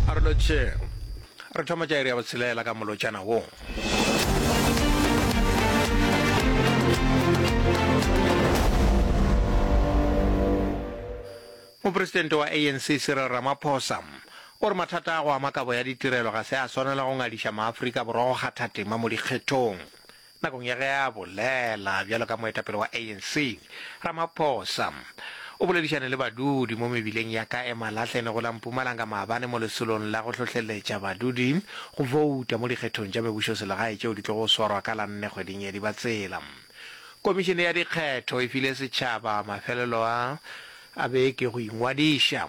a re lotšheng re thoma tša iri ya botshelela ka molotšana wo mopresidente wa anc cyril ramaphosa o re mathata a go ama kabo ya ditirelo ga se a swanela go ngadiša maaforika borwa go kgatha tema mo dikgethong Nakong ya ge a bolela bjalo ka moetapele wa ANC, Ramaphosa o boledišane le badudi mo mebileng ya ka e Malahle ne go la Mpumalanga maabane mo lesolong la go hlohleletša badudi go bouta mo dikgethong tša mebušoselegae tšeo di tlogo swarwa ka la nne kgweding ya Dibatsela. Komišene ya dikgetho e file setšhaba mafelelo a a beke go ingwadiša.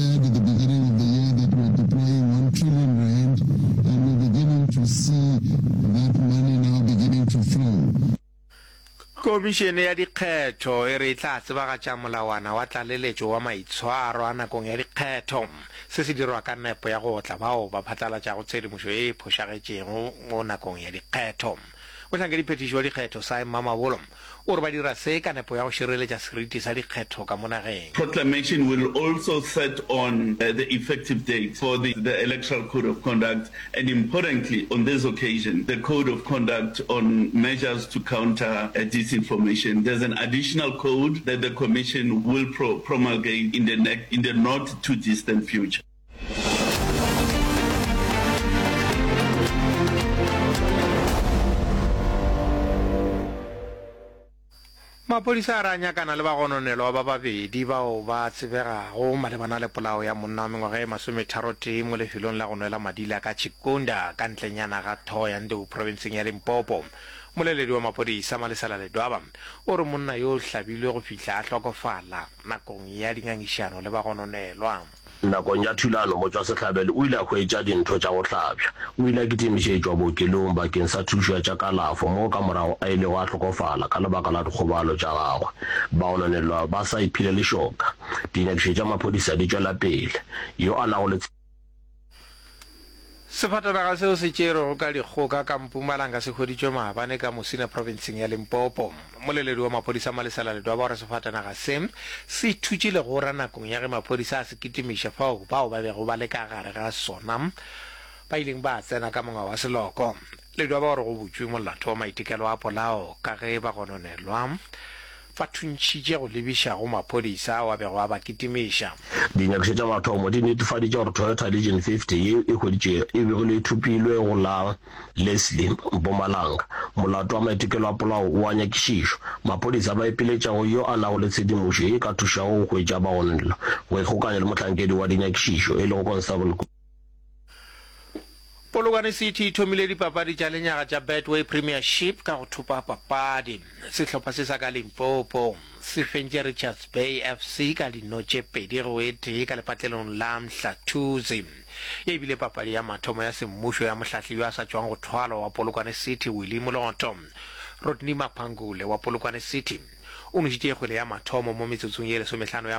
said at the beginning of the year that we are deploying 1 trillion rand and we're beginning to see that money now beginning to flow. Komišene ya Dikgetho e re e tla tsebagatša molawana wa tlaleletšo wa maitshwaro a nakong ya dikgetho. Se se dirwa ka nepo ya go otla bao ba phatlalatšago tshedimošo e e phošagetšego nakong ya dikgetho. Mohlankadiphethiši wa dikgetho Sy Mamabolo o re ba dira se ka nepo ya go šireletša seriti sa dikgetho ka mo nageng. Proclamation will also set on the effective date for the the Electoral Code of Conduct and importantly on this occasion the Code of Conduct on Measures to Counter Disinformation. There's an additional code that the Commission will pro promulgate in the next in the not too distant future. maphodisa a re a nyakana le bagononelwa ba babedi bao ba tsebegago malebana le polao ya monna wa mengwaga e masometharotee mo lefelong la go nwela madila ka chikunda ka ntlenyana ga thogo ya ndeu provinseng ya limpopo moleledi wa maphodisa malesela ledwaba o re monna yo o hlabilwe go fihla a hlokofala nakong ya dingangišano le bagononelwa Nakong ya thulano, motšwasehlabelo o ile a hwetša dintho tša go hlabja. O ile a kitimišetšwa bookelong bakeng sa thušo ya tša kalafo moo ka morago a ilego a hlokofala ka lebaka la dikgobalo tša gagwe. Baononelwa ba sa iphile lešoka. Dinyakišo tša maphodisa di tšwela pele. Yo a nago le Sefatanaga seo se tšerwego ka dikgoka ka Mpumalanga se hweditšwe maabane ka Musina provinseng ya Limpopo. Moleledi wa maphodisa Malisela Ledwaba o re sefatanaga se, se ithutše legora nakong ya ge maphodisa a se kitimiša fao bao ba bego ba le ka gare ga sona ba ileng ba tsena ka monga wa seloko. Ledwaba o re go butšwe molato wa maitekelo a polao ka ge ba gononelwa Ba thuntšhitše go lebiša go maphodisa ao a bego a ba kitimiša. Dinyakišo tša mathomo di netefaditše gore Toyota Legion 50 ye e hweditšego e begilwe e thopilwe go la Leslie, Mpumalanga. Molato wa maitokelo a polao o a nyakišišwa. Maphodisa ba ipiletša go yo a nago le tshedimošo ye e ka thušago go hwetša bagononelo, go ikgokanya le mohlankedi wa dinyakišišo e lego Constable. Polokwane City e thomile dipapadi tša lenyaga tša Betway Premiership ka go thopa papadi. Sehlopha se sa ka Limpopo se fentše Richards Bay FC ka dino tše pedi go e tee ka lepatlelong la Mhlathuze. Ye e bile papadi ya mathomo ya semmušo ya mohlahli yo a sa tšwago go thwalwa wa Polokwane City Willie Moloto. Rodney Maphangule wa Polokwane City o nwešitše kgwele ya mathomo mo metsotsong ye lesomehlano ya